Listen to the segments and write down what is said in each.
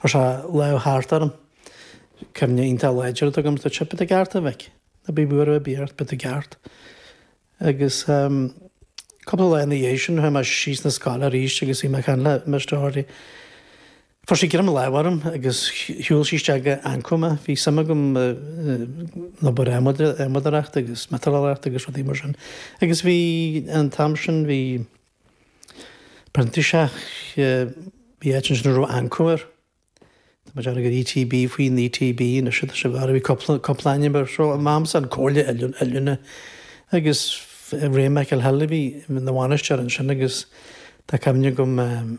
Chuir sé a lámh thart orm. Cuimhne iontach láidir atá agam dó. Seo, beidh tú i gceart, a mhic. Ná bíodh buaireamh ar bith ort, beidh tú i gceart. Agus cúpla lá ina dhiaidh sin, chuaigh mé síos chun na scoile arís agus bhí mé ag caint le Mr. Hardy. Fuair sé greim láimhe orm agus shiúil sé isteach go Anco mé. Bhí suim agam in obair adhmadóireacht agus miotalóireacht agus rudaí mar sin. Agus bhí, an t-am sin, bhí. printíseach, bhí áit ansin a raibh Anco air, tá mé ag déanamh gur ETB, faoin ETB anois atá sé, b'fhéidir go raibh cúpla, cúpla ainm air. So, an t-am sin, an Chomhairle Oiliúna, Oiliúna agus Ray Mac an Aoil a bhí ina bhainisteoir ansin agus tá cuimhne agam,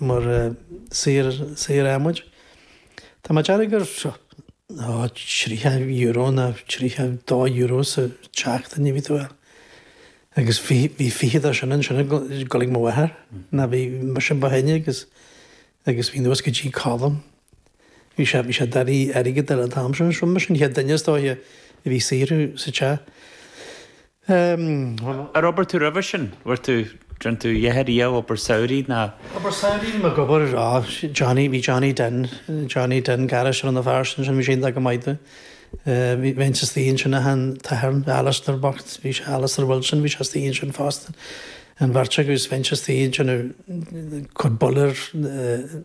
mar shaor adhmaid. Tá mé ag déanamh gur €30 nó €32 sa tseachtain a bhí tú ag fáil agus bhí fiche de sin ansin ag dul chuig mo mháthair nó ba mise an ba shine agus agus bhí anuas go dtí Colm. Bhí sé bhí siad i ndiaidh airgid ar an t-am sin so mise an chéad duine is dóiche a bhí ag saothrú sa teach. Bhuel. Ar oibir tú roimhe sin? Bhfuair tú, rinne tú do dheartháir riamh obair samhraidh nó. Obair samhraidh, bhí mé ag obair, á, Johnny, bhí Johnny Den, Johnny Den Garris ar an bhfear sin, sin bhí sé iontach go maith do. Bhí, bhínn istigh ansin ag an t-athair, Alastair bocht, bhí sé, Alastair Wilson, bhí sé istigh ansin fosta. An bheirt agaibh, bhínnse istigh ansin, cuir bollaire,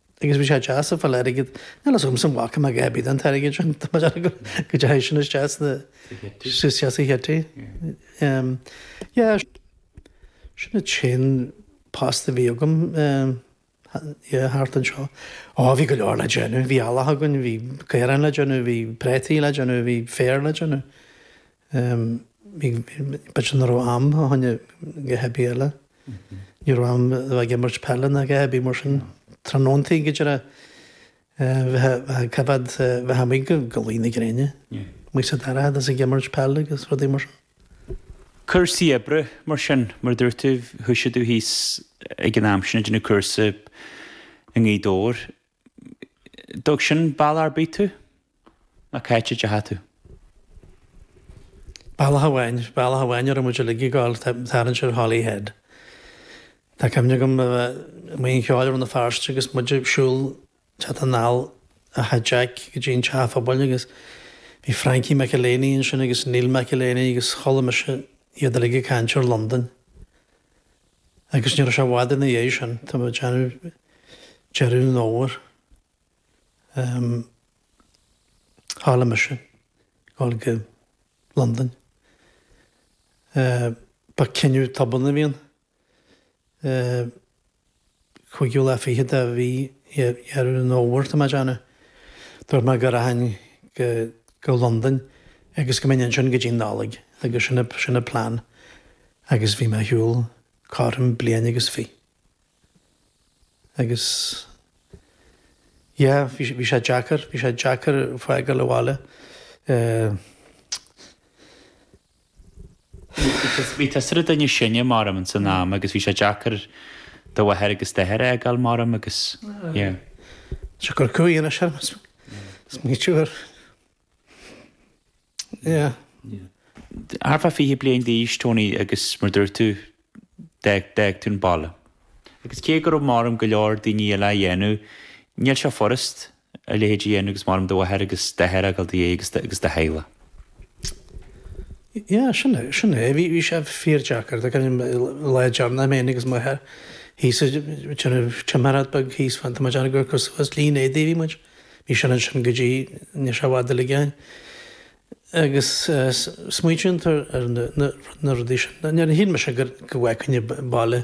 agus bhí sé deas ag fáil airgead. Níl a fhios agamsa an bhfaca mé a dhath ar bith den airgead sin, tá mé dearfa go dteachaigh sin isteach sna, isteach sa chití. Yeah, sin an t-aon post a bhí agam, yeah, thart anseo. Ó, bhí go leor le déanamh, bhí eallach againn, bhí caoráin le déanamh, bhí prátaí le déanamh, bhí féar le déanamh. b'fhéidir nach raibh am ag a dhath ar bith eile. Ní raibh am ag imirt peile ná a dhath ar bith mar sin tráthnóntaí go dtí bheith ag coimheád bheith amuigh go go luí na gréine. Amuigh sa dorchadas agus ag imirt peile agus rudaí mar sin. Cúrsaí oibre mar sin mar a dúirt tú, thoisigh tú thíos ag an am sin ag déanamh cúrsa i nGaoth Dobhair. D'fhág sin bealach ar bith tú, nó cá háit a dteachaigh tú. Bealach amháin, bealach amháin a raibh muid uilig ag gabháil, ag tarraingt ar Holyhead. Tá cuimhne agam a bheith amuigh oíche cheoil i Rann na Feirste agus muid ag siúl, ag teacht anall as tigh Jack go dtí an teach pobail agus bhí Frankie McElhaney ansin agus Neil McElhaney agus chuala mise iad uilig ag caint ar Londain. Agus ní raibh sé i bhfad ina dhiaidh sin, tá mé ag déanamh deireadh an fhómhair, shíl mise a dhul go Londain. Ba cinneadh tobann a bhí ann. Cúigiú lá fichead de mhí Dheireadh an Fhómhair tá mé ag déanamh. Dúirt mé go rachainn go Londain agus go mbeinn ansin go dtí'n Nollaig agus sin an plean agus bhí mé ar shiúl cothrom bliain agus fiche agus yeah bhí sé deacair, bhí sé deacair fágáil an bhaile. Bhí tusa an duine is sine, m'anam, san am agus bhí sé deacair do mháthair agus d'athair a fhágáil, m'anam, agus yeah. Seo gur cúig anois orm, is maítear gur, yeah. Ar feadh fiche bliain d'aois, Tony, agus mar a dúirt tú, d'fhág tú an baile. Agus cé go raibh, m'anam, go leor daoine eile á dhéanamh, níl sé furast a leithéid a dhéanamh agus, m'anam, do mháthair agus d'athair a fhágáil i do dhéidh agus do theaghlach. Yeah, sin é, sin é. Bhí, bhí sé fíordheacair, do cuimhním lá deireanach, mé fhéin agus m'athair thíos ag déanamh tiomáireád beag thíos fan, tá muid ann gur cosúil is lín éadaigh a bhí muid, bhí sin ansin go dtí, níl sé i bhfad uilig uainn. agus smaoitíonn tú ar na rudaí sin. Níor shíl mise go bhfeicfinn an baile